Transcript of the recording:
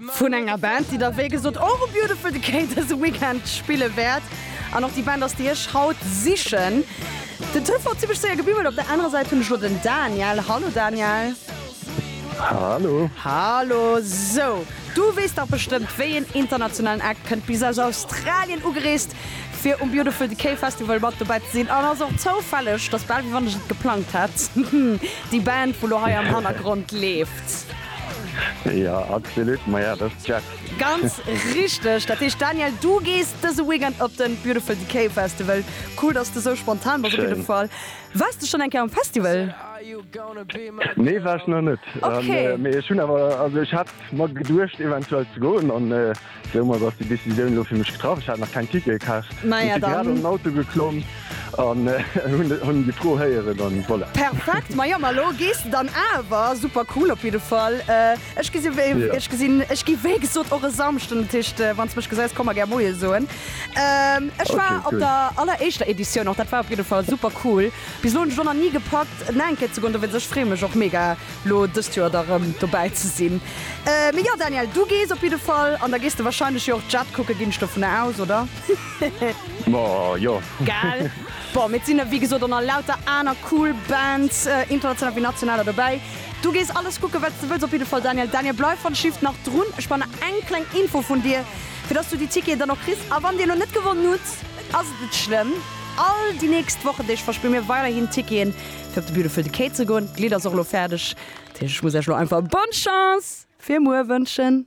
Vun enger Band, déi da wéi gesot och um Beautiful Decay dëse Weekend spille wäert. An och déi Band ass, déi ech haut sichen. Den Tëffe huet zimmlech séier gebiwwelt. Op der anerer Säit hunn ech elo den Daniel. Hallo Daniel. Hallo. Hallo. Sou, du weess dach bestëmmt, wéi een internationalen Act kënnt bis aus Australien ugereest, fir um Beautiful Decay Festival mat dobäi ze sinn. An ass och zoufälleg, dass, bal wéi wann ech et geplangt hätt, déi Band, wou elo hei am Hannergrond leeft. Ja absolut ma ja dat ass Jazz. Ganz richteg! Dat heescht Daniel, du gees dëse Weekend op den Beautiful Decay Festival. Cool dass de sou spontan bass op jidde Schéin. Fall. Waars de schonn eng Kéier um Festival? Nee war ech nach net, Okay. mee ech hunn awer also ech hat mer geduecht eventuell ze goen an. Soumat ass déi Decisioun elo fir mech getraff. Ech hat nach keng Tickete gekacht, mee si grad an den Auto geklomm an hunn déi Fro héieren an voilà. Perfekt, ma jo, ma elo gees de dann awer. Super cool op jidde Fall. Ech gi si wéi ech gesinn, ech gi wéi gesot och e Samschden. Dat heescht, wann s de mech gesäis, komm mer gär Moie soen. Ech war op der alleréischter Editioun och, dat war op jidde Fall super cool. Bis elo hunn ech et och nach ni gepackt, nach eng Kéier ze goen. Dowéinst, ech freeë mech och mega. lo dëst Joer da rëm dobäi ze sinn. Mee jo Daniel, du gees op jidde Fall an da gees de warscheinlech jo och d'Jett kucken, ginn ech dovun aus, oder? Ma jo. Gell? Bon, mee et sinn der wéi gesot och nach lauter aner cool Bands, internationaler wéi nationaler, dobäi. Du gees alles kucken, wat s de wëlls op jidde Fall. Daniel, Daniel, bleif wann Shift nach drun, ech brauch nach eng kleng Info vun dir, fir dass du déi Ticketen dann och kriss. A wann dir elo net gewonnen hutt, ass et net schlëmm, all déi nächst Wochendeg verspille mir weiderhin Ticketen Fir op de Beautiful Decay ze goen. D'Lidd ass och elo fäerdeg, dat heescht ech muss iech elo einfach Bonne Chance fir muer wënschen.